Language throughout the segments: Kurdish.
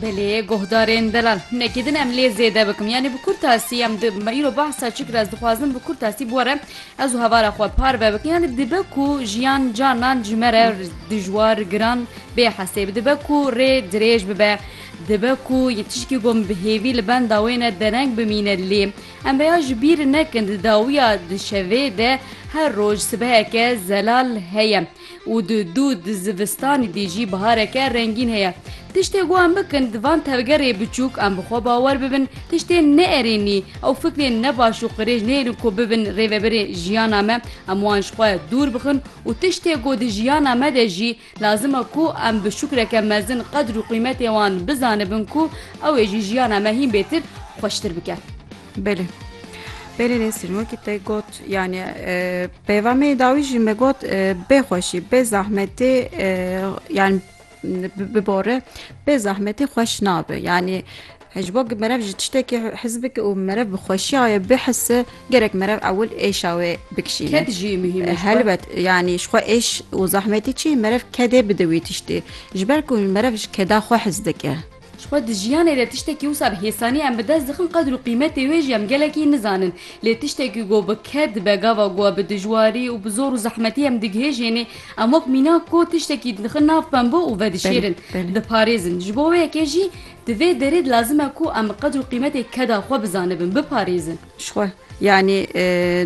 Belê guhdarên delal nekî din em lê zêde bikim yanî bi kurta sî em me îro behsa çi kir ez dixwazim bi kurta sî bore ez û hevara xwe parve bikin yanî dibe ku jiyan canan ji me re dijwar giran bê hesêb dibe ku rê dirêj bibe dibe ku yê tişkî gom bi hêvî li benda wê ne dereng bimîne lê em veya ji bîr nekin di dawiya di şevê de her roj sibeheke zelal heye. Û di dû di zivistanî dî jî bihareke rengîn heye. Tiştê ku em bikin di van tevgerê biçûk em bi xwe bawer bibin tiştên neerênî ew fikrên ne baş û qirêj neyêrin ku bibin rêvebirê jiyana me em wan ji xwe dûr bixin û tiştê ku di jiyana me de jî lazim e ku em bi şukreke mezin qedr û qîmetê wan bizanibin ku ew ê jî jiyana me hîn bêtir xweştir bike. Belê. Belê Nesrin wekî te got yani e, peyvamê dawî jî me got e, bê xweşî bê zahmetê e, yani bibore bê zahmetê xweş nabe yani ji bo merev ji tiştekî hizbikê û merev bi xweşiyayê bihise gerek merev ewil êşa wê bikişîne Ked jî muhîm e. helbet yani ji xwe êş û zahmetî çi merev kedê bide wî tiştê ji ber ku merev ji keda xwe hez dike Ji xwe di jiyanê de tiştekî wisa bi hêsanî em bi dest dixin qedr û qîmetê wê jî em gelekî nizanin. Lê tiştek ku go bi ked dibe gava ku bi dijwarî û bi zor û zehmetî em digihêjênê em wek mînak ku tiştekî dixin nav pembo û vedişêrin, diparêzin. Ji bo wê yekê jî di vê derê de lazim e ku em bi qedr û qîmetê keda xwe bizanibin, biparêzin. Jixwe yanî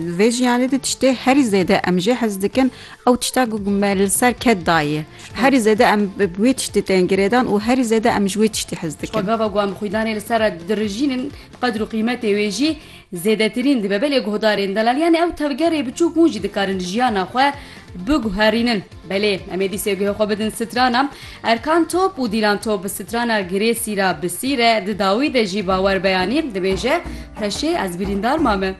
di vê jiyanê de tiştê herî zêde em jê hez dikin ew tişta ku me li ser ket daye. Herî zêde em bi wê tiştê tên girêdan û herî zêde em ji wê tiştê hez dikin. Jixwe gava ku em xwîdanê li ser re dirijînin qedr û qîmetê wê jî zêdetirîn dibe belê guhdarên delaliyanê ew tevgerê biçûk hûn jî dikarin jiyana xwe Biguherînin. Belê em ê dîsê guhê xwe bidin strana Erkan Top û Dîlan Top bi strana Girêsî ra bi sîr e. Di dawî de jî bawer beyanî dibêje, Teşê ez birîndar mame.